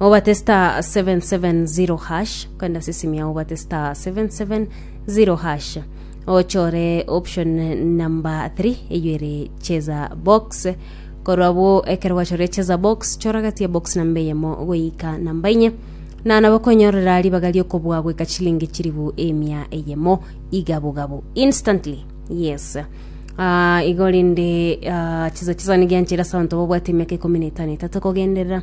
Obate star 770 hash kwenda sisimi yao obate star 770 hash ochore option number 3 eyo ere cheza box korwa abwo ekero gwachore cheza box choragatie box namba eyemo goika namba inye na nabo konyorera ribaga riokobua goika chilingi chiribu emia eyemo igabogabo instantly yes Ah, igo rinde ah, chiza chisani gianchera ase abanto babwate emiaka ikomi na etano etato kogenderera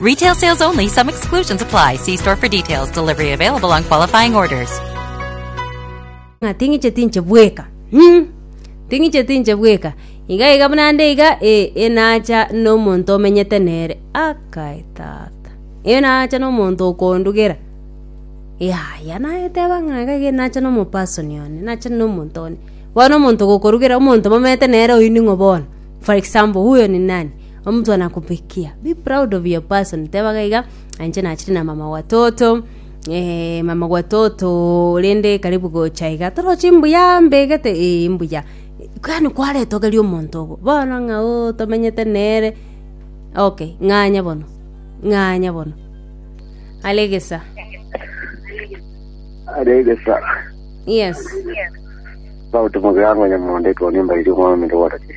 Retail sales only, some exclusions apply. See store for details. Delivery available on qualifying orders. ng'a ting'iche tinche bweka mm. ting'iche tinche bweka iga iga buna nde iga e, enacha nomonto omenyete nere akae tata enacha nomonto okondugera yaya naeteba ng'a iga iga enacha nomopasoni one nacha nomonto one bono omonto gokorugera omonto momete nere oyio ning'o bono for example huyo ni nani Omonto nakobekia, be proud of your person, tebaga iga, Inche nachire na mama gwa toto, eh, mama gwa toto rende karibu gocha iga, toroche mbuya mbegete, eh mbuya. Yaani kwaretogeria omonto obo, bono ng'a oh tomenyete nere, okay, ng'anya bono, ng'anya bono. Are egesa, Are egesa. yes. Sauti mogirango nyamonde toni mbairi omwami ndogoretie.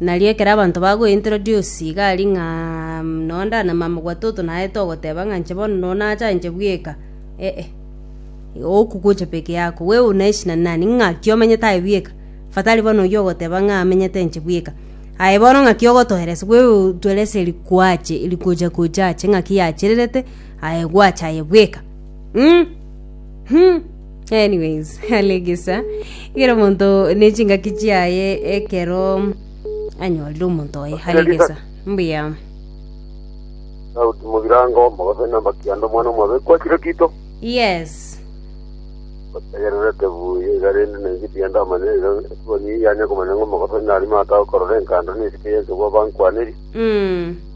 Nario ekero abanto bagointroduce iga aria ng'a nonya ndanamama gwatoto naete ogoteba ng'a inche bono nonya nacha inche bweka, eh-eh. Oku gocha peke yako, wewe unaishi na nani? Ng'aki omenyete aye bweka? Fatari bono oyio ogoteba ng'a amenyete inche bweka. Aye bono ng'aki ogotoeresa? Wewe tuerese rikoache, rikocha kocha ache ng'aki yachererete, aye gwacha aye bweka? Mh! Mh! Anyways, alegesa igere omonto ne chingaki chiaye ekero anyorire omonto oye alegesa mbuya Daudi Mubirango, Mogobe na Makianda omwana omobe kwachire kito. yes Bategerere tebuye iga rende na inche tiga ndamanya iga esiboni yanya komanya ng'o Mogobe nari mata okorora enkanda na esike yense bwa bankwaneri. mm.